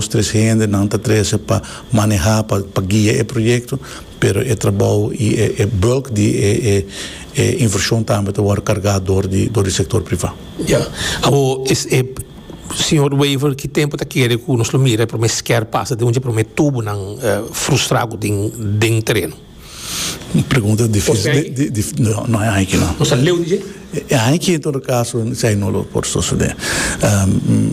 Nos tres hendenan ta trese pa maneha, pa pa guia e proyecto, pero e trabou y e e bulk di e e e inversion tambe ta worde carga door di door di sector priva. Ya, awor es e Señor Wever ki tempo ta kere cu nos lo mira e prome square pasa den un dje prome tubonan frustra cu tin den tereno? Un pregunta dificil no hay aiki no. Nos a leu di dje? E aiki en todo caso esai no lo por sucede.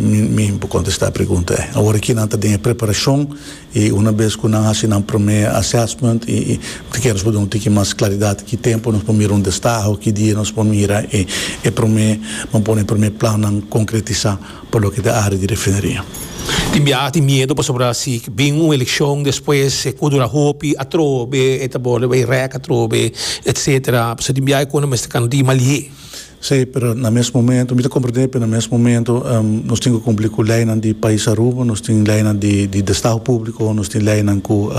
Mi por contesta e pregunta ei. Awor aki nan ta den e preparacion y una vez cu nan haci nan primer assessment y ta kere nos por duna un tiki mas claridad ki tempo nos por mira un destaho, ki dia nos por mira e primer, bo pone e primer plannan concretisa. pa loke ta área di refineria. Tin biaha tin miedo pasobra si bin un elekshon despues e ku dura hopi atrobe e ta borde bai rèk atrobe etsetera pasobra tin biaha e kunan mester kanu di mali'é. Sí, pero na mes momento, mi ta komprendé pero na mes momento nos tin ku kumpli ku leinan di pais Aruba, nos tin leinan di di destao públiko, nos tin leinan ku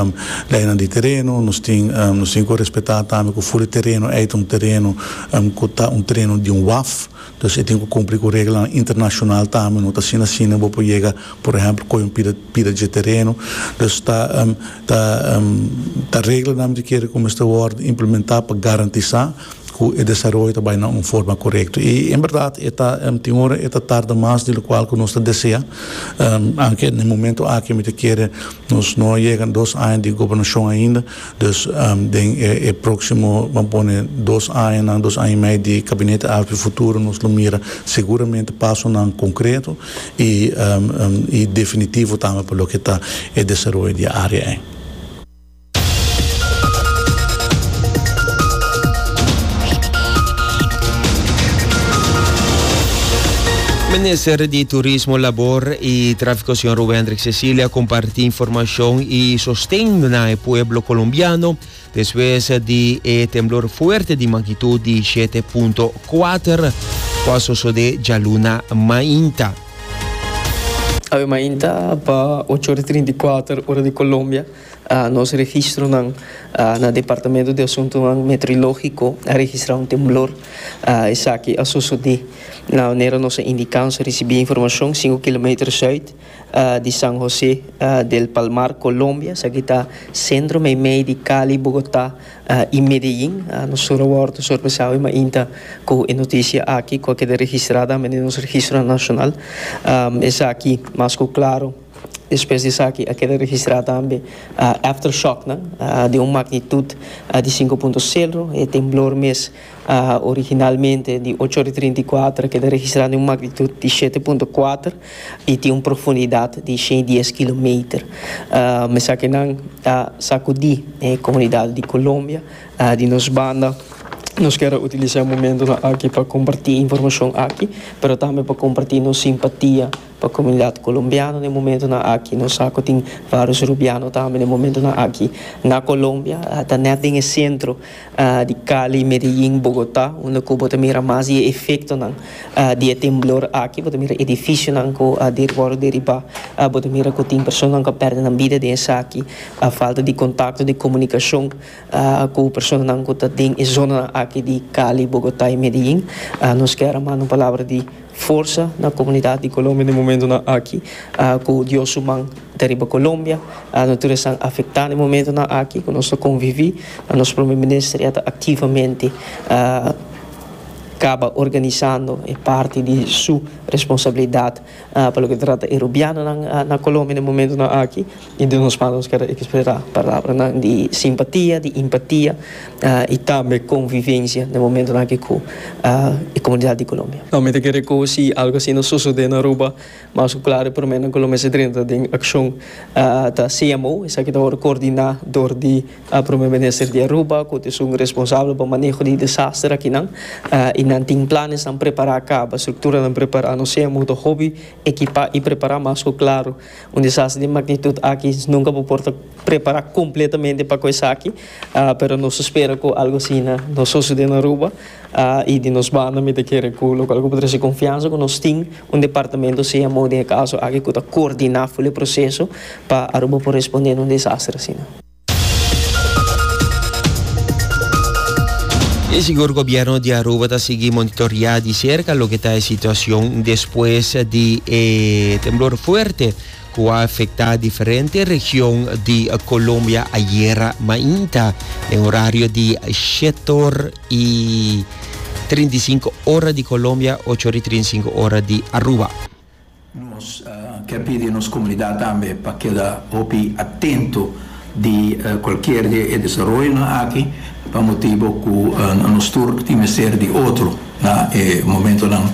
leinan di tereno, nos tin nos tin ku respetá tambe ku fuli tereno ei ta un tereno ku ta un tereno di un waf. Entonces e tin cu cumpli cu reglanan internacional tambe, no ta asina asina bo por yega por ehemplo coge un pida pida dje tereno, entonces ta ta ta reglanan dje kere cu mester wordo implementa pa garantisa cu e desaroyo ta bay na un forma corecto y en berdad e ta tin ora e ta tarda mas di locual cu nos ta desea, aunke na e momento aki mi ta kere nos no a yega dos aña di gobernacion ainda. Dus den e próksimo bo a pone dos añanan, dos aña i mei di Gabinete Aspi Futuro nos lo mira seguramente pasonan konkreto i i definitivo tambe pa loke ta e desaroyo di e área ei. Minister di Turismo, Labor i Tráfikosion Rubén. Cecilia comparti informacion y sosten na e pueblo colombiano despues di e temblor fuerte di magnitud di shete punto kuater cu a sosode djaluna mainta. Awe mainta pa ocho ora trinta i kuater ora di Colombia nos registronan na Departamento di Asuntonan Meteorologico a registra un temblor. Esaki a sosode na manera nos a indica, nos a ricibi informacion sinku kilometer zuid. di San José del Palmar, Colombia, esaki ta sentro meimei di Cali, Bogotá i Medellín. Nos tur a wòrdu sorpresá awe mainta ku e notisia aki, ku a keda registrá tambe den nos registro nashonal. Esaki mas ku klaru despues di esaki a keda registrá tambe aftershoknan di un magnitut di sinku punto seru, e temblor mes. Originalmente di ocho ora i trinta i kuater keda registrá den un magnitud di shete punto kuater i tin un profundidat di shen i dies kilometer. Mesaki nan a sakudí e komunidat di Kolombia. Di nos banda nos kere utilisá e momentunan aki pa kompartí informashon aki pero tambe pa kompartí nos simpatia pa komunidat kolombiano na e momentunan aki. Nos sa ku tin vários rubiano tambe na e momentunan aki na Kolombia ta nèt den e sentro. di Cali, Medellín, Bogotá, unda ku bo ta mira mas di e efektonan di e temblor aki. Bo ta mira edifisionan ku a wòrdu deribá. Bo ta mira ku tin personanan ku a pèrdè nan bida den esaki. Falta di kontakto, di komunikashon ku personanan ku ta den e zonanan aki di Cali, Bogotá i Medellín. Nos ke a ran manda un palabra di. Forsa na comunidad di Colombia den momentonan aki cu Dios su man ta riba Colombia. Nos tur esnan afecta den momentonan aki cu nos ta convivi. Nos Prome Minister ya ta activamente caba organisando e parti di su responsabilidad pa loke ta trata e Rubianonan na Colombia den momentonan aki. I den nos manos keda ekspresá palabranan di simpatia, di empatia i tambe konvivensia den momentunan aki ku e komunidat di Colombia. Mi ta kere ku si algu asina a sosodé na Aruba, mas ku klar e promé nan ku lo mester drenta den akshon ta CMO, esaki ta wòrdu koordiná dor di Promé Minister di Aruba ku ta esun responsabel pa maneho di desaster akinan i nan tin planesnan prepará kaba, strukturanan prepará. Nos CMO ta hopi ekipá i prepará mas ku klar. Un desastre di magnitud aki nunca bo por ta prepara completamente pa cu esaki, pero nos ta spera cu algo asina no sucede na Aruba y di nos banda mi ta kere cu locual cu bo ta traci confianza cu nos tin un departamento CMO den e caso aki cu ta coordina full e proceso pa Aruba por responde na un desastre asina. E sigur Gobierno di Aruba ta sigui monitorea di cerca loke ta e situacion despues di e temblor fuerte cu a afecta diferente region di Colombia ayer mainta den horario di shetor y trinta y cinco ora di Colombia, ocho ora y trinta y cinco ora di Aruba. Nos ke pidi nos komunidat tambe pa keda hopi atento di kualkier di e desaroyonan aki pa motibu ku nos tur tin mester di otro na e momentonan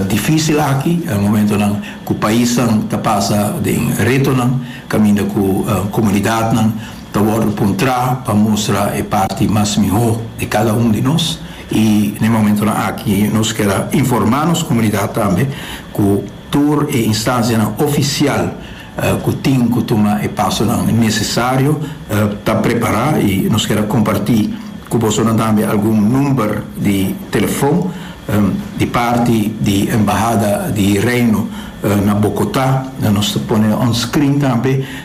difisil aki, momentonan ku paisnan ta pasa den retonan kaminda ku komunidatnan. Ta wòrdu puntrá pa mustra e parti mas mihó di kada un di nos i na e momentunan aki nos kier a informá nos komunidat tambe ku tur e instansianan ofisial ku tin ku tuma e pasonan nesesario ta prepará i nos kier a kompartí ku bosonan tambe algun number di telefon di parti di Embahada di Reino na Bokotá nos ta pone onscreen tambe.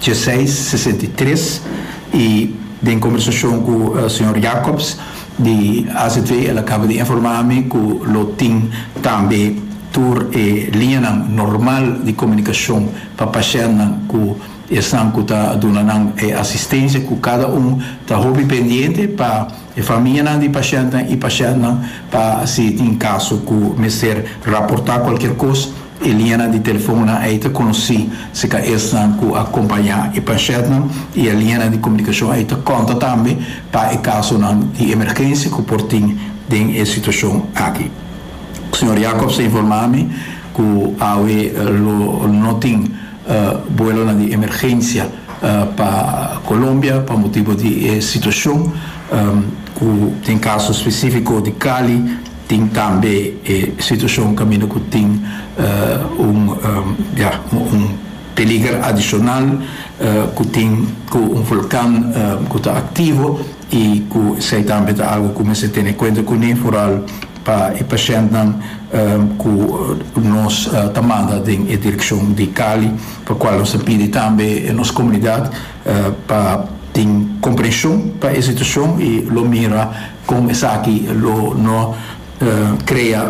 Djeseis sesenta i tres i den kombersashon ku señor Jacobs di AZW el a kaba di informá mi ku lo tin tambe tur e liñanan normal di komunikashon pa pashèntnan ku esnan ku ta duna nan e asistensia ku kada un ta hopi pendiente pa e famianan di pashèntnan i pashèntnan pa si tin kaso ku mester raportá kualkier kos. E liñanan di telefonnan ei ta konosí si ta esnan ku a kompañá e panshetnan i e liñanan di komunikashon ei ta kònta tambe pa e kasonan di emergensia ku por tin den e situashon aki. Señor Jacobs a informá mi ku awe lo no tin buelonan di emergensia pa Colombia pa motibu di e situashon ku den kaso spesífiko di Cali, Tin tambe e situacion caminda cu tin un ja, un peliger adicional cu tin cu un volcan cu ta activo y cu esey tambe ta algo cu mester tene cuenta cune vooral pa e pacientnan cu nos ta manda den e direccion di Cali pa cual nos ta pidi tambe nos comunidad pa tin comprension pa e situacion y lo mira Kon esaki lo no krea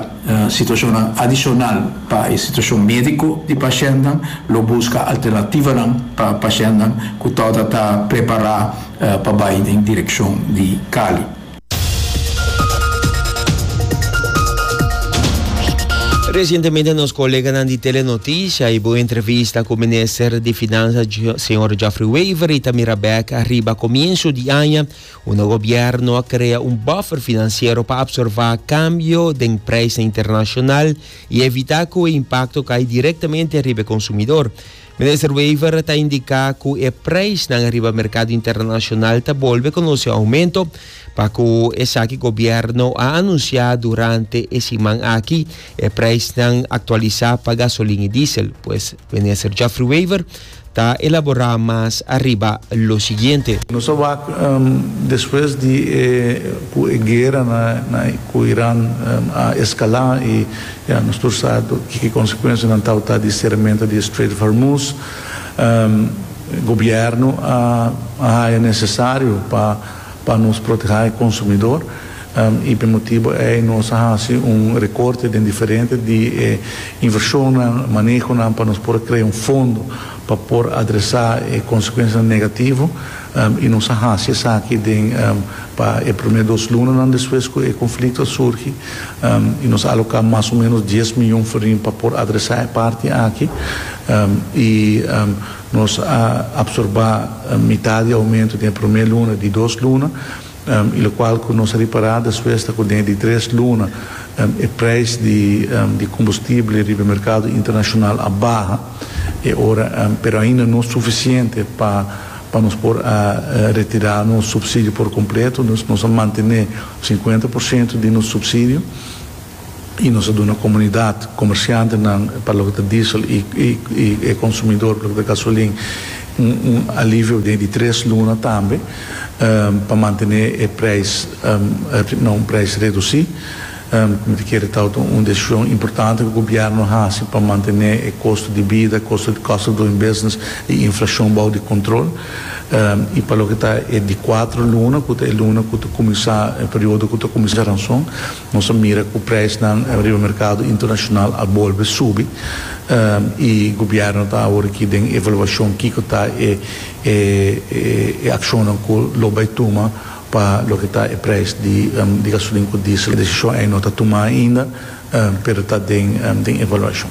situashonnan adishonal pa e situashon médiko di pashennan? Lo buska alternativanan pa pashennan ku tabata ta prepará pa bai den direkshon di Cali. Resientemente nos koleganan di Telenoticias hibo un entrevista ku minister di Finansa señor Geoffrey Wever i ta mira bèk riba komiensu di aña, Unda gobièrnu a krea un bòfer finansiero pa apsorbá kambio den preisnan internashonal i evitá ku e impakto kai direktamente riba e konsumidor. Minister Wever ta indiká ku e preisnan riba merkado internashonal ta bolbe konosé oumento pa ku esaki gobièrnu a anunsiá durante e siman aki e preisnan aktualisá pa gasolin i diesel. Pues, Minister Geoffrey Wever Ta elaborá mas ariba lo siguiente. Nos a wak despues di e ku e guera na ku Iran a eskalá i ya nos tur sa kiko konsekuensianan tawata di seramentu di e Strait of Hormuz. Gobièrnu a haya nesesario pa. Pa nos protehá e konsumidor, i p'e motibu ei nos a hasi un rekorte den diferente di e invershonnan, manehonan pa nos por a krea un fondo pa por adresá e konsekuensianan negativo, i nos a hasi esaki den pa e promé dos lunanan despues ku e konflikto a surgi, i nos a aloká mas o ménos dies miyon forin pa por adresá e parti aki, i. Nos a absorbá mitad di oumento den e promé luna di dos luna i lokual ku nos a ripará despues ta ku den e di tres luna e preis di kombustible riba e merkado internashonal a baha e ora pero ainda no sufisiente pa pa nos por a retirá nos supsidio por kompleto. Nos a mantené sinkuenta por siento di nos supsidio. y nos a duna comunidad, comerciantenan pa loke ta diesel y y e consumidor pa loke ta gasolin un un alivio den di tres luna tambe pa mantene e prijs na un prijs reduci. Mi ta kere ta un un decision importante cu gobierno a haci pa mantene e costo di bida, costo di cost of doing business y inflacion bao di control y pa loke ta e di cuatro luna cu ta e luna cu ta cuminsa periodo cu ta cuminsa ranson, Nos a mira cu prijsnan riba mercado internacional a bolbe subi y gobierno ta awor aki den evaluacion kico ta e e accionnan cu lo bay tuma pa loke ta e prijs di gasolin cu diesel. Decision ei no ta tuma ainda pero ta den evaluacion.